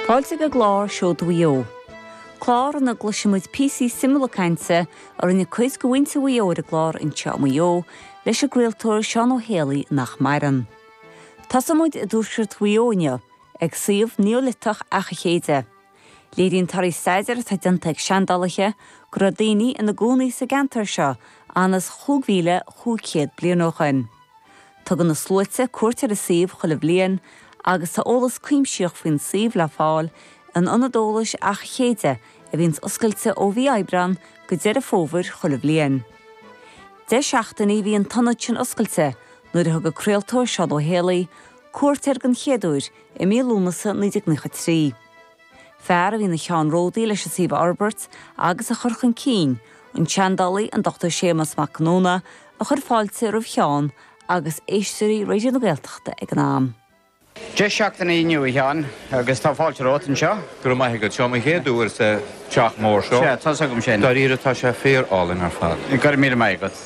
Fáilte chuig an gclár Seoid Mhaigh Eo, clár ina gcloisfidh muid píosaí suimiúla cainte a rinne cuid de mhuintir Mhaigh Eo ar an gclár Anseo i Maigh Eo leis an gcraoltóir Seán Ó hÉalaí nach maireann. Tosóidh muid i dtuaisceart Mhaigh Eo inniu, ag suíomh Neoiliteach Achaidh Chéide. Léiríonn torthaí staidéar atá déanta ag seandálaithe go raibh daoine ina gcónaí sa gceantar seo ionann's 5,500 bliain ó shoin. Tugann na sluaite cuairt ar an suíomh chuile bhliain agus tá eolas cuimsitheach faoin suíomh le fáil in Ionad Eolais Achaidh Chéide a bhíonns oscailte ó mhí Aibreán go Deireadh Fómhair chuile bhliain. Deich seachtainí a bhí an t-ionad sin oscailte nuair a thug an craoltóir Seán Ó hÉalaí cuairt air den chéad uair i mí Lúnasa 1993. Fear a bhí ina cheannródaí leis an suíomh a fhorbairt agus a chur chun cinn, an seandálaí an Dr Séamas Mac Conghamhna, a chuir fáilte roimh Sheán agus éisteoirí Raidió na Gaeltachta ag an am. Deich seachtainí inniu, a Sheáin, agus tá fáilte romhat anseo. Go raibh maith agat. Seo mo chéad uair sa teach mór seo. Sea, tá's agam sin. Dáiríre, tá sé fíor-álainn ar fad. Go raibh míle maith agat.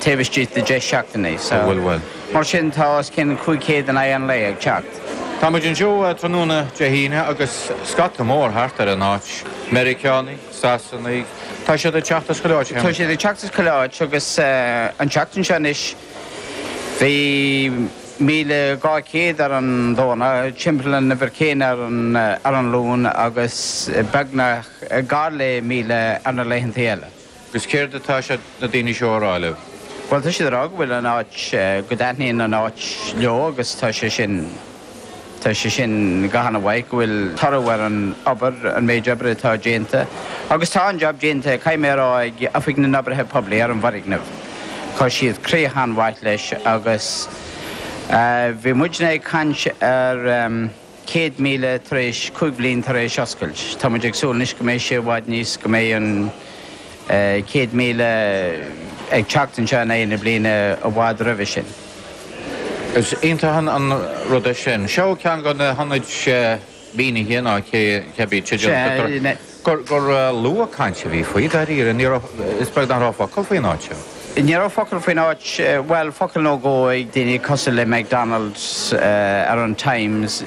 taobh istigh de 10 seachtainí. Sa bhfuil bhfuil. Mar sin, tá os cionn 500 in aghaidh an lae ag teacht. Tá muid anseo tráthnóna Dé hAoine agus scata mór thart ar an áit, Meiriceánaigh, Sasanaigh, tá siad ag teacht as chuile áit cheana. Tá siad ag teacht as chuile áit agus an tseachtain seo anois bhí 1,200 ar an Domhnach, timpeall an uimhir chéanna ar an Luan agus beagnach, gar le 1,000 ar na laethanta eile. Agus céard atá siad, na daoine seo, a rá libh? Bhuel, tá siad a rá go bhfuil an áit, go dtaitníonn an áit leo agus tá sé sin, tá sé sin go han-mhaith, go bhfuil toradh ar an obair, an méid obair atá déanta. Agus tá an jab déanta, caithfidh mé a rá, ag Oifig na nOibrithe Poiblí ar an bhfoirgneamh. Chuir siad críoch an-mhaith leis agus bhí muidne ag caint ar, 100 míle tar éis cúig bliana tar éis oscailt. Tá muid ag súil anois go mbeidh sé i bhfad níos go mbeidh an 100 míle ag teacht anseo in aghaidh na bliana i bhfad roimhe sin. Is iontach an rud é sin. Seo ceann de na hionaid mhínithe, ná cé bith teideal. gur lú caint a bhí faoi, dáiríre. Ní raibh, is beag nach raibh focal faoin áit seo. Ní raibh focal faoin áit, bhuel, focal nó dhó ag daoine cosúil le McDonald ar an Times,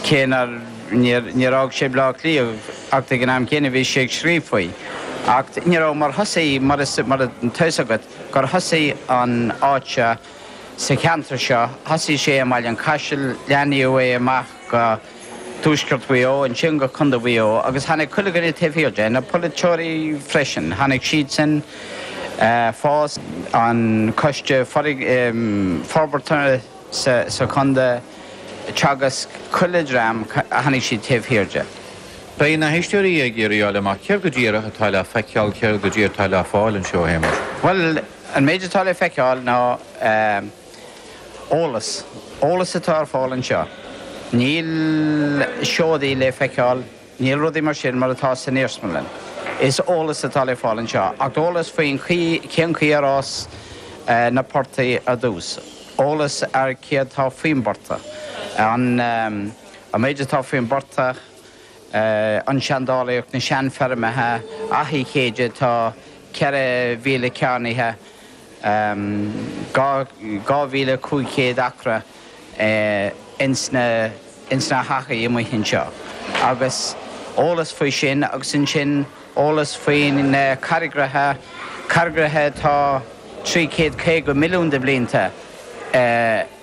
cé nár, níor, níor fhág sé Baile Átha Cliath, acht ag an am gcéanna bhí sé ag scríobh faoi. Acht ní raibh, mar thosaigh, mar is, mar atá fhios agat, gur thosaigh an áit seo, sa cheantar seo, thosaigh sé i mBaile an Chaisil, leathnaíodh é amach go, Tuaisceart Mhaigh Eo, ansin go Contae Mhaigh Eo, agus tháinig chuile dhuine taobh thiar de, na polaiteoirí freisin, tháinig siadsan, FÁS, an coiste forbartha sa chontae, Teagasc, chuile dhream, tháinig siad taobh thiar de. Beidh na héisteoirí ag iarraidh a fháil amach céard go díreach atá le feiceáil, céard go díreach atá le fáil anseo, a Shéamais? Bhuel, an méid atá le feiceáil ná. Eolas, eolas atá ar fáil anseo. Níl seodaí le feiceáil, níl rudaí mar sin mar atá san iarsmalann. Is eolas atá le fáil anseo, ach eolas faoin chaoi, cén chaoi ar fhás na portaigh ar dtús, eolas ar céard tá faoin bportach, an méid atá faoin bportach, an seandálaíocht, na seanfeirmeacha, Achaidh Chéide, tá 4,000 cearnaithe. 2,500 acra ins na hachaidh amuigh anseo agus eolas faoi sin agus ansin eolas faoi na carraigreacha, carraigreacha atá 350 milliún de bhlianta.